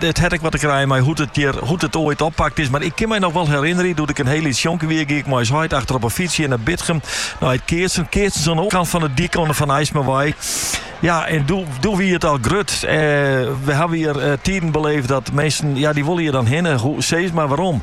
it hat ek wat te krijen mei hoe't it hjir, hoe't it oait oppakt is. Mar ik kin my noch wol herinnerjen doe't ik in hiel lyts jonkje wie, gie ik mei ús heit achter op 'e fyts hjir nei Bitgum, nei it keatsen. Keatsen oan de oarkant fan de dyk, oan de Van Aismawei. Ja, en doe, doe wie it al grut. Eh, we hawwe hier eh, tiden beleefd dat minsken, ja, die wolle hier dan hinne. Hoe, seg maar waarom.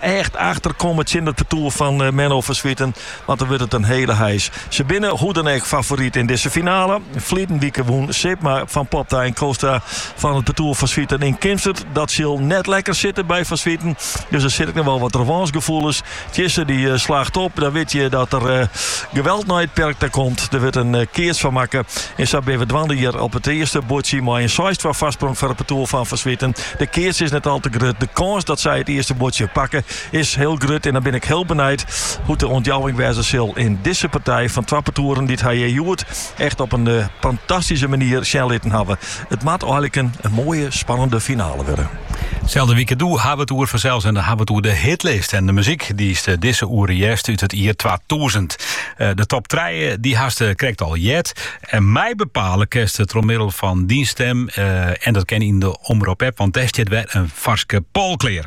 Echt efter komme tsjin it partoer fan Menno van Zwieten, want dat wurdt it in hiele heis. Se binne hoe dan ek favoryt yn dizze finale. Ferliden wike wûn Sipma, Van Popta en Kootstra fan it partoer Van Zwieten yn Kimswert. Dat sil net lekker sitte by Van Zwieten, dus der sit ek noch wol wat revânsgefoelens. Tsjisse. dy slacht op, dan wit je dat er mei geweld nei it perk ta komt. Der wurdt in keats fan makke en sa binne we dwaande hjir op it earste buordsje mei in seis-twa foarsprong foar it partoer fan Van Zwieten. De keats is net al te grut. De kâns dat sy it earste buordsje pakke is hiel grut. En dan bin ik hiel benijd hoe't de ûntjouwing wêze sil in dizze partij fan twa partoeren dy't har hjoed echt op in fantastyske manier sjen litten hawwe. It moat eiliken in moaie, spannende finale wurde. Selde wike doe hawwe wy it oer fansels en dan hawwe wy it oer de hitlist en de muzyk dy'st dizze oere hearst út it jier twatûzen. De top trije dy hast krekt al heard. En meibepale kinsto troch middel fan dyn stim en dat kin yn de Omrop-app, want dêr stiet wer in farske poll klear.